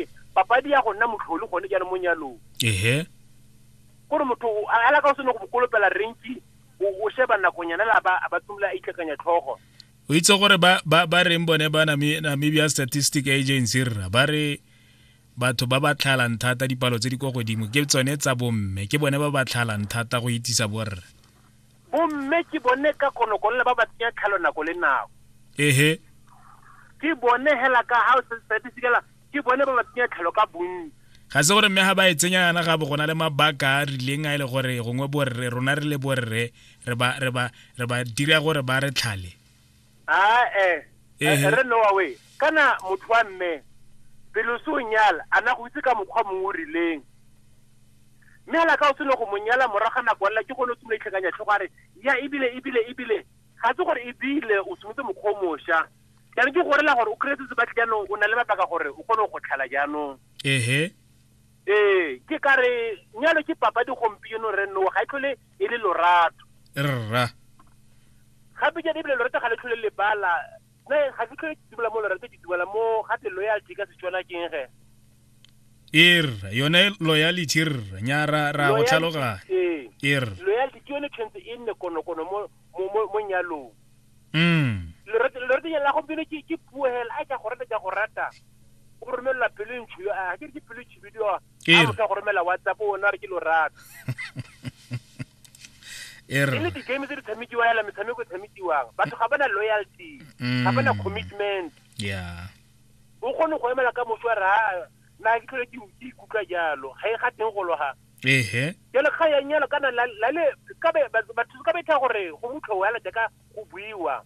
ke papadi ya go nna motlholi gone jaanong mo nyalong ehe gore motho o- a a laka o sene go bokolopela renki o o sheba nakonyana le a ba a ba tsomola a itlhakanya tlhogo o itse gore ba ba ba reng bone ba Nami- namibia statistic agency rra ba re batho ba ba tlhalang thata dipalo tse di kwa godimo ke tsone tsa bomme ke bone ba ba tlhalang thata go itisa borre Bomme ke bone ka konokonola ba ba tsenya tlhalo nako le nako. Ehe. Ke bone hela ka ha o se se se dikela ke bone ba ba tsenya tlhalo ka bontsi. Ga se gore mme ga ba e tsenya yana ga bo gona le mabaka a rileng a ile e gore gongwe borre rona re le borre re ba re ba re ba dira gore ba re tlhale. ae Ehe. re noa we kana motho wa mme pele o se o nyala a na go itse ka mokgwa mongwe o rileng mme ala ka o seno go mo nyala morago ga nako lela ke gone o simole itlhakanya tlhogo a re ya ebile ebile ebile ga se gore ebile o simotse mokgwa o mošwa jaanong ke gorela gore o kry-etse sebatle jaanong o na le mabaka gore o kgone go tlhala jaanong ehe Ee, ke ka re nyalo ke papadi gompieno re nnoa ga e tlhole e le lorato. Rra. Gape jaana ebile lorato ga le tlhole lebala. Nna ga ke tlhole ke dumela mo lorato ke dumela mo ga te loyalty ka Setswana ke eng ge? Ee rra, yone loyalty rra, nya ra ra go tlhaloganya. Ee. Ee rra. Loyalty ke yone tshwentse e nne konokono mo mo mo mo nyalong. Mm. Lorato lorato ya la go pele ke ke puo hela a ka go rata ka go rata. O romela pele ntsho yo a ke ke pele chibidio. A Ee. mo ka go romela WhatsApp o na re ke lorato. E re. E le di game tse di tshamekiwa hela metshameko e tshamekiwang. Batho ga bana loyalty. Ga bana Mm. commitment. Yeah. O kgone go emela ka moso a re ha na ke tlhole ke ke ikutlwa jalo. Ga e ga teng go loga. ehe jale ga ya nyalo kana la la le ka be batho ba thusa ka betha gore go mutlho wa la ka go buiwa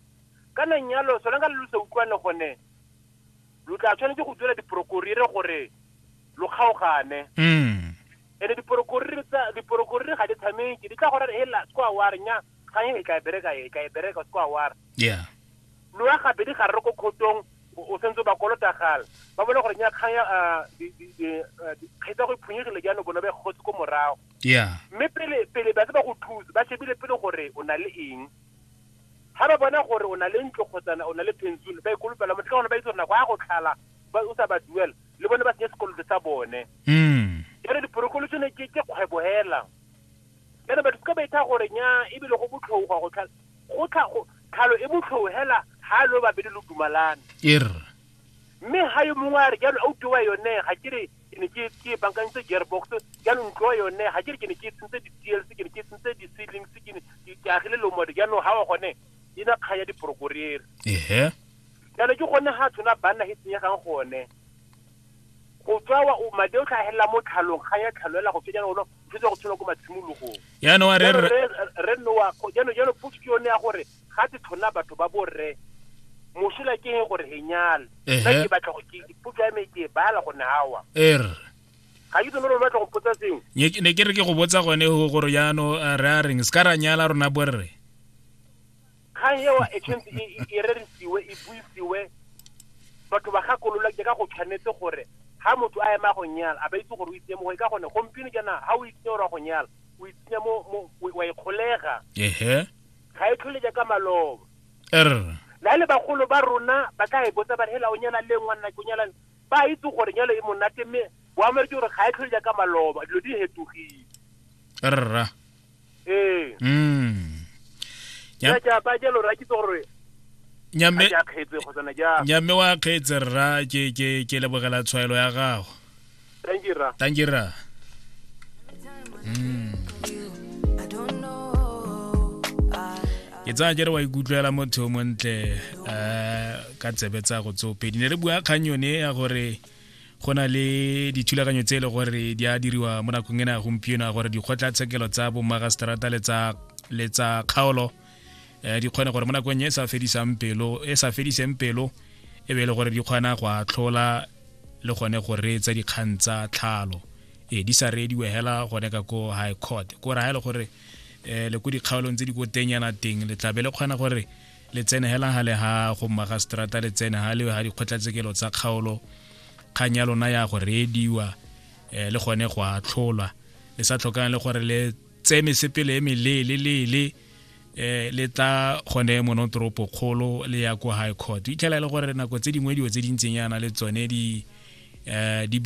kana nyalo sona ka lu se utlwane gone lu tla tshwanetse go dira diprokorire gore lo kgaogane mm ene diprokorire tsa diprokorire ga di tshameke di tla gore he la kwa wa re nya ga e ka bereka e ka bereka kwa wa re yeah lo ya gabedi ga re ko khotong o sentse o ba kolota gala ba bone gore nyakgang ya kgetsa go phunyegile jaanong bone ba e gotse ko morago mme pele pele ba se ba go thusa ba shebile pele gore o na le eng ga ba bona gore o na le ntlo kgotsana o na le pension ba ikolopela motho ka gone ba itse gore nako ya go tlhala o sa ba duela le bone ba senye sekoloto sa bone mm. jalo diporokolotšone ke kgwebo hela jalo batho ka ba itha gore nya ebile go botlhokwa go tlhala Go tla go, tlhalo e mo tlhou hela ha lo babedi lo dumalane. Err. Mme ha yo mongwe a re jalo auto wa yone ga ke re ke ne ke ke e bankantse gearbox jalo ntlo yone ga ke re ke ne ke tsentse di TLC ke ne ke tsentse di seedlings ke ne ke ke agile lomode jalo ha wa gone e na kgaya diporokorere. Ehe. Jalo ke gone ha tshwana banna he tsenyegang gone. Go tswa wa o madi o tlhagelela mo tlhalong ga ya tlhaloela go fetsa ona o fetsa go tshola ko matshimologong. Ya no re re re no wa go ya no ya no push ke yone ya gore ga tse tlhona batho ba bo re mosola ke he gore he nyala. Ka ke batla go ke push ya me ke ba la go ne hawa. Er. Ga ke tsone re batla go potsa seng. Nye ne ke re ke go botsa gone go gore ya no re a reng ska ra nyala rona bo re. kgang eo e tshwanetse e- e- e rerisiwe e buisiwe batho ba gakolola ke ka go tshwanetse gore ha motho a ema go nyala a ba itse gore o itse mo go ka gone gompieno jaana ha o itse gore wa go nyala o itse mo mo- o- wa ikgolega ehe ga e tlhole jaaka maloba er na le bagolo ba rona ba ka e botsa ba re, hela o nyala le ngwana ke o nyala le-" ba itse gore nyalo e monate mme boamere ke gore ga e tlhole jaaka maloba dilo di hetogile rra ee mm ya ja ba jalo ra ke gore nyamme ya khetse go tsena ja nyamme wa khetse rra ke ke ke lebogela tshwaelo ya gago thank you rra thank you rra mm ke tsaya jere wa ikutlwela motho o montle um ka tsebe tsa go tsopedi ne re bua kgang yone ya gore go na le dithulaganyo tse e le gore di a diriwa mo nakong ena ya gompieno ya gore dikgotlatshekelo tsa bomagaseterata le tsa le tsa kgaolo um di kgone gore mo nakong e sa fedisang pelo e sa fediseng pelo e be e le gore di kgona go atlhola le gone go reetsa dikgang tsa tlhalo e di sa reediwe hela gone ka ko high court ko ra e le gore um le ko dikgaolong tse di ko tenyana teng le tlabe le kgona gore le tsene hela ha le ha go mmaga strata le tsene ha le ha dikgotlatsekelo tsa kgaolo kgang ya lona ya go reediwa um le gone go atlholwa le sa tlhokang le gore le tseye mesepele e melelelele um eh, le tla gone monotoropo kgolo le ya ko high court itlhela e le gore nako tse dingwe dilo tse di ntseng yana le tsone di um